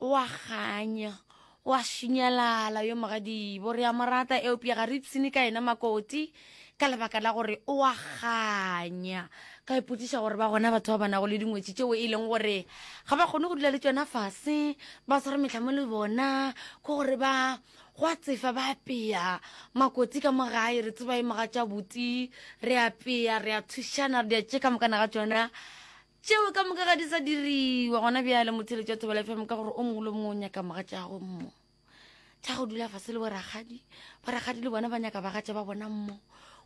O a kganya, o a šinyalala yo mogadibo. Re a mo rata, eupša ga re ipshine ka yena makoti ka lebaka la gore o a kganya. Ka ipotšiša gore ba gona batho ba ba nago le dingwetši tšeo e leng gore ga ba kgone go dula le tšona fase, ba swara metlhamo le bona, ke gore ba go a tsefa ba apea makoti ka mo gae re tseba e moga tša buti re apea re a thušana re di a tše ka mokana ga tšona Tšeo ka moka ga di sa diriwa gona bjale motheletši wa thobela fm ka gore o mongwe le mongwe o nyaka moga tša gago mmo tša go dula fase le borakgadi borakgadi le bona ba nyaka bagatša ba bona mmo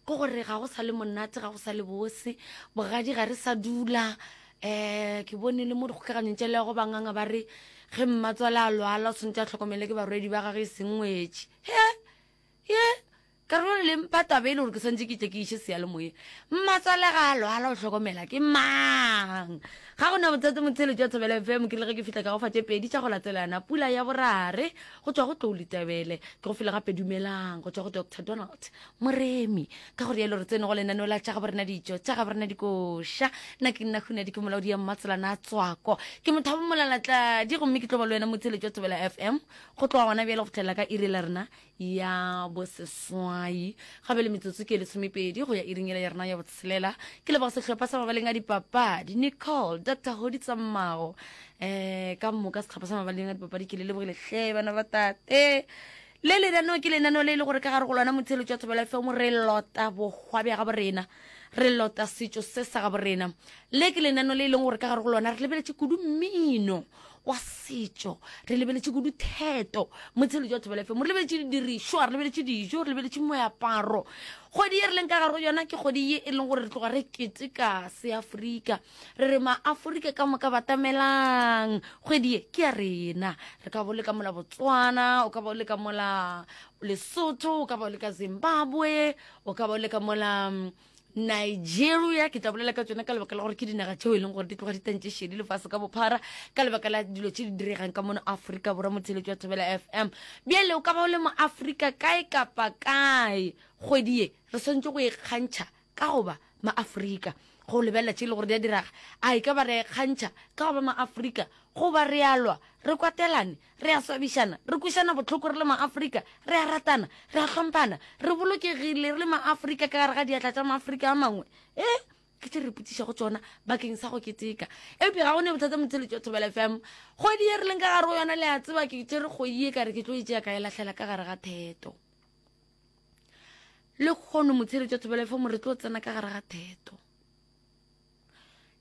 ko gore ga go sa le monate ga go sa le bose bogadi ga re sa dula um ke bone le mo dikgokaganyong tša lego banganga ba re ge mmatswale a lwala o tshwanetse a tlhokomele ke barwedi ba gage e sengwetše he ye Karolwane le mpha taba e le gore ke swantse ke tle ke iše seyalemoyeng. Mmatswale ga a lwala o hlokomela ke mang? Ga go na bothata motheeletši wa Thobela FM ke le ge ke fihla ka go fa tše pedi tša go latelana. Pula ya borare go tšwa go Tlou Letebele. Ke go file gape Dumelang go tšwa go Doctor Donald Moremi. Ka go rialo re tsene go lenaneo la Tša Gabo Rena Ditšo Tša Gabo Rena Dikoša. Nna ke nna Hunadi ke molaodi ya Mmatselana a Tswako. Ke mothabo molalatladi gomme ke tlo ba le wena motheeletši wa Thobela FM go tloga gona bjale go fitlhelela ka iri la rena ya boseswai ga be le metsotso ke lesomepedi go ya iringela ya rena ya botshelela ke leboga sehlopha sa mabaleng a dipapadi nicole dr hodi tsammago um ka moka setlhopha sa mabaleng a dipapadi ke le lebogile hle bana ba tate le lenaneo ke lenaneo le e le gore ka gare go lona motshelo jwa thobela fm re lota bokgwa bja gabo rena re lota setso se sa gabo rena le ke lenaneo le e leng gore ka gare go lona re lebeletse kudu mmino wa setšo re lebeletše kudu theto motshelo jwa thobela fm re lebeletše didirišwa re lebeletše dijo re lebeletše moaparo kgwedi ye re leng ka garo yona ke kgwedi ye e leng gore re tloga re keteka seaforika re re maaforika ka moka batamelang kgwedi ye ke ya rena re ka bo le ka mola botswana o ka bo le ka mola lesotho o ka bo le ka zimbabwe o ka bo le ka mola nigeria ke tla bolela ka tsone ka lebaka la gore ke dinaga tšeo e leng gore di tloga di tantše šedi lefase ka bophara ka lebaka la dilo tše di diregang ka mono aforika borwa motheletši wa thobela fm bjale o ka ba o le mo aforika kae kapa kae kgwedi ye re swantse go e kgantšha ka goba maaforika go lebelela tše e le gore di a diraga a e ka ba re kgantšha ka goba maaforika goba re alwa re kwatelane Re a swabišana, re kwešana bohloko re le ma-Afrika, re a ratana, re a hlomphana, re bolokegile re le ma-Afrika ka gare ga diatla tša ma-Afrika a mangwe. E, ke tše re ipotšišago tšona bakeng sa go keteka. Eupša ga go ne bothata motheletši wa Thobela FM. Kgwedi ye re leng ka gare go yona, le a tseba, ke tšere kgoyi ye ka re ke tlo e tšea ka e lahlela ka gare ga theto. Le kgono motheletši wa Thobela FM re tlo tsena ka gare ga theto.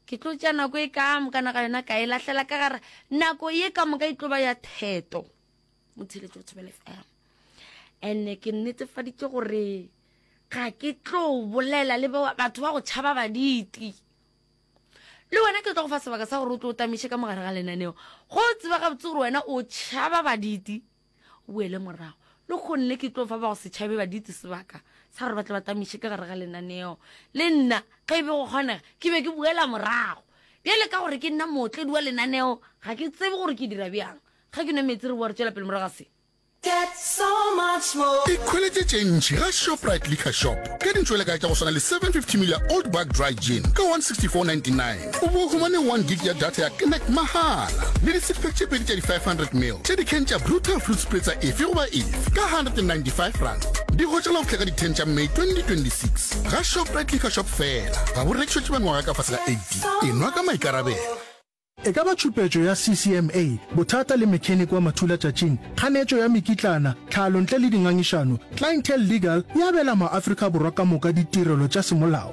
ke tlo tša nako e ka moka naga yona ka e lahlela ka gara nako ye ka moka e tlo ba ya theto motheletso o thobele fm and-e ke nnetefaditse gore ga ke tlo bolela le batho ba go tšhaba baditi le wena ke tlo go fa sebaka sa gore o tlo o tamiše ka mogare ga lenaneo go tseba gabotse gore wena o tšhaba baditi o boele morago le kgone le ke tlo fa ba go setšhabe ba ditse sebaka sa gore ba tle ba tamiše ka gare ga lenaneo le nna ge e be go kgonega ke be ke boela morago bjale ka gore ke nna mootledi wa lenaneo ga ke tsebe gore ke dira bjang ga ke nwe metsi re boa re tswela pele morago ga se ikhweletše tše ntši ga shoprite liquor shop ka dintšwelekae tša go swana le 750 ml ya old bag dry gin ka 164.99 O bo humane one gig ya data ya Connect mahala le disiphe tše pedi tša di-500 mil tša dikhen tša Bluetooth fruit spritzer efe goba efe ka R195. Di hotša la go hleka di 10 tša May 2026 ga Shoprite Liquor Shop fela. Ga bo rekišwe tše ba nywaga ka fase ga 18. E nwa ka maikarabelo. E ka ba tšhupetšo ya CCMA, bothata le mechanic wa mathulatšatšing, kganetšo ya mekitlana, tlhalo ntle le dingangišano, Clientele Legal e abela maAfrika Borwa ka moka ditirelo tša semolao.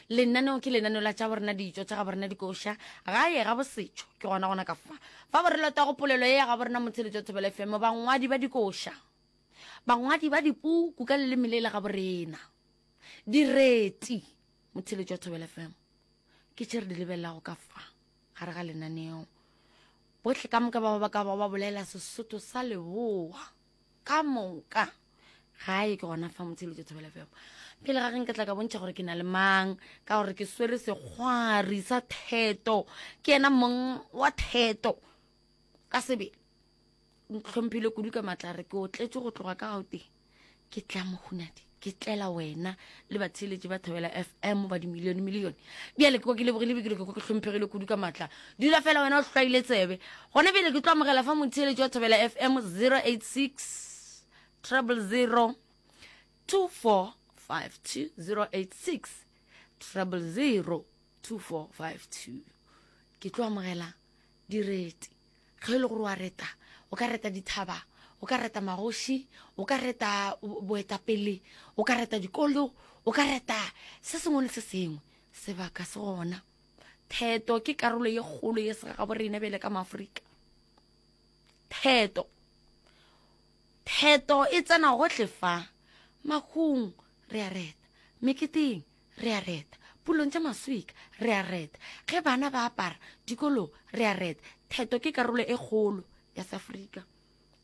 Lenaneo ke lenaneo la tša borena dijo tša ga borena dikoša gae ga bosetšho ke gona gona ka fa fa bo re lota go polelo ye ya ga borena motsheletso wa thobelo fm bangwadi ba dikoša bangwadi ba dipuku ka leleme le le ga borena direti motsheletso wa thobelo fm ke tše re di lebelelago ka fa gare ga lenaneo bohle ka moka ba ba ka ba ba bolela sesotho sa leboa ka moka gae ke gona fa motsheletso thobela feo pele ga geng ke tla ka bontšha gore ke na le mang ka gore ke swere sekgwari sa theto ke ena mong wa theto ka sebele ntlhomphile kudu ka matlare ke o tletše go tloga ka gauteng ke tla mohunadi ke tlela wena le batheeletši ba thobela fm ba dimilione milione bjale ke kwa ke lebogile bikelo ke kwa ke hlomphegile kudu ka maatla dula fela wena o hlwaile tsebe gona bjale ke tlo amogela fa motheeletši wa thobela fm 086 trouble 0 2452 086 trouble 0 2452 ke tlo amogela direti Ge e le gore o a reta, o ka reta dithaba, o ka reta magoši, o ka reta boetapele, o ka reta dikolo, o ka reta se sengwe le se sengwe. Sebaka se gona. Theto ke karolo ye kgolo ye sega gabo rena bjale ka Maaforika. Theto. Theto e tsena gohle fa. Makgong re a reta. Meketeng re a reta, pulong tša maswika, re a reta, ge bana ba apara, dikolong, re a reta, theto ke karolo e kgolo ya Seafrika.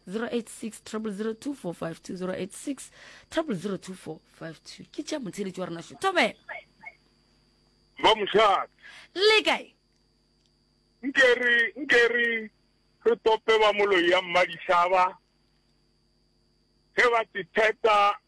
086 000 2452 086 000 2452 ke tša motheletši wa rena šo thobela ba mošate le kae nke re nke re re tope ba moloi ya mmadishaba ge ba tetheta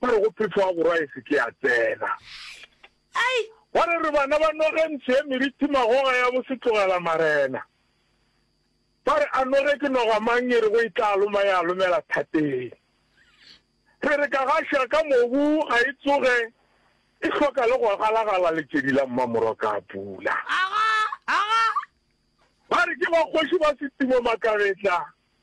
ba re go phefoga borwa e se ke ya tsena. Ai! Ba re re bana ba noge ntsho ye merithi magoga ya bo se tlogela marena. Ba re a noge ke noga mang e re go e tla loma ya lomela thateng. Re re ka gaša ka mobu ga e tsoge e hloka le go galagala letšedi la mmamorwa ka a pula. Aga! Aga! Ba re ke ba kgoši ba setimo makabetla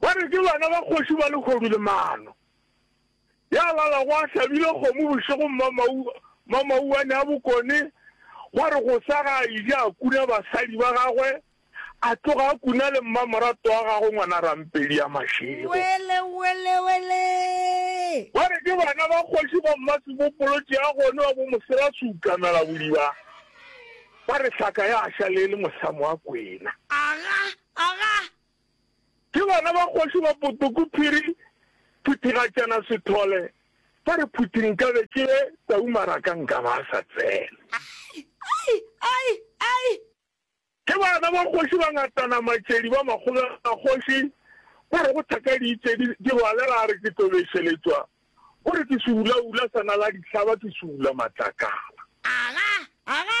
Ba re ke bana ba kgoši ba lehodu le maano. Ya lalago a hlabile kgomo bošego mmamau, mmamau a ne a bokone, gwa re go sa ga a ija a kuna basadi ba gagwe, a tloga a kuna le mmamoratwa wa gagwe ngwana Rampedi ya Mašego. Wele, wele, wele! Ba re ke bana ba kgoši ba Mmasebopolotši ya gone wa bo Mosela Seukamela Bodiba. Ba re hlaka ya ša le e le mosamo wa kwena. Aga, aga! Ke bana ba kgoši ba Potoku Phiri Phuthigatšana Sethole ba re phuthi nkabe ke ye tau maraka nkaba a sa tsena. Ai! Ai! Ai! Ai! Ke bana ba kgoši ba ngatana Matšedi ba Makgobela kgoši ba re go thaka diitsedi di rwalega a re ke tlo bešeletšwa o re ke seulaula sa na la dihlaba ke seula matlakala. Aga! Aga!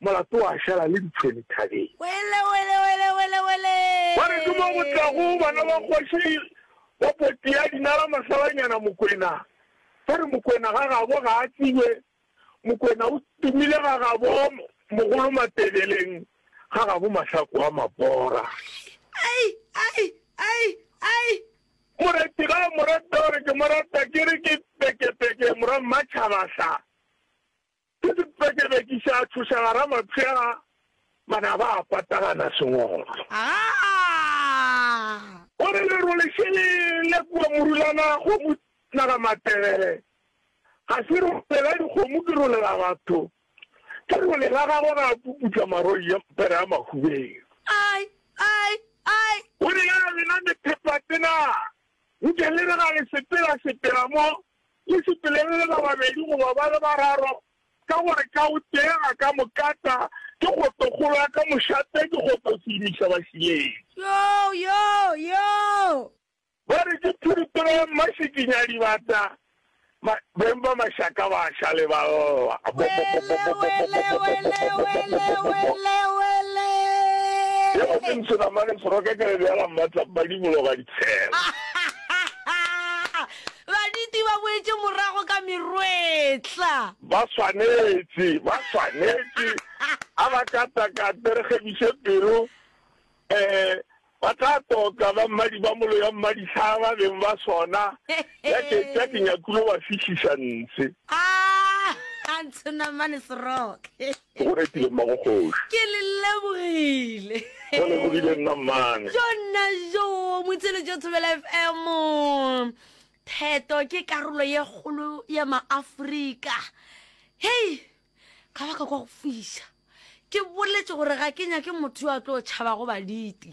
Molato wa šala le ditšhwene thabeng. Wele, wele, wele, wele, wele! Ba re ke mo go tlago bana ba kgoši ba potea dinala masalanyana Mokwena. Ba re Mokwena ga gabo ga a tsebje, Mokwena o tumile ga gabo mogolo Matebeleng, ga gabo mahlaku a mabora. Ai, ai, ai, ai! Moreti ga a mo rata, o re ke mo rata, ke re ke pekepeke, Morwa Mmatšhaba sa. Ke sepekebekiša a tšhoša gara mapšega, manaba a patagana sengolo. Aa! O re leru le še le lle kua Morulana kgomo naga Matebele, ga se role la dikgomo ke role la batho, ke role la gagwe ga a puputša maroi ya mpere a mahubeng. Ai! Ai! Ai! O re ya lena methepatenaa nke le re ga le sepela sepela mo Le sepelelele ba babedi goba ba le bararo, ka gore ka o tee a ka mo kata, ke kgotokgolo ya ka mošate, ke kgotoseimiša bašileng. Yoo, yoo, yoo! Ba re ke phiripiro ya mmašikinyadibata, ma, beng ba mašaka ba a ša le ba lla. Wele, wele, wele, wele, wele, wele! Ye go se ntsho nama le seroka, ke re beela mmatla, Mmadibolo ga ditshela. Baditi ba boetše morago ka merwetla. Ba swanetše, ba swanetše, a ba katakate, re kgebiše pelo. Ee, ba tla toka, ba mmadi ba molo ya mmadihlaa ba beng ba sona, ya ke, ya ke nyakulo ba fišiša ntshe. A, a ntshe namane seroke. Ke go retile mmago kgoši. Ke le lebogile. Go lebogile nna mmane. Jo nna jo, motshelo jo Thobela FM. Theto ke karolo ye kgolo ya maAfrika. Hei, ga ba ka kwa go fiša. Ke boletše gore ga ke nyake motho yo a tlo tšhabago baditi.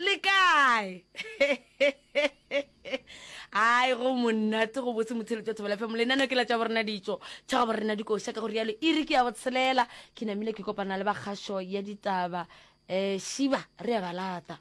le kae ai go monate go botse motshelo tša thobela fm lenano ke la tša borena ditso tša go borena dikoša ka go rialo e re ke ya botshelela ke namile ke kopana le bakgašo ya ditaba um šiba re ya balata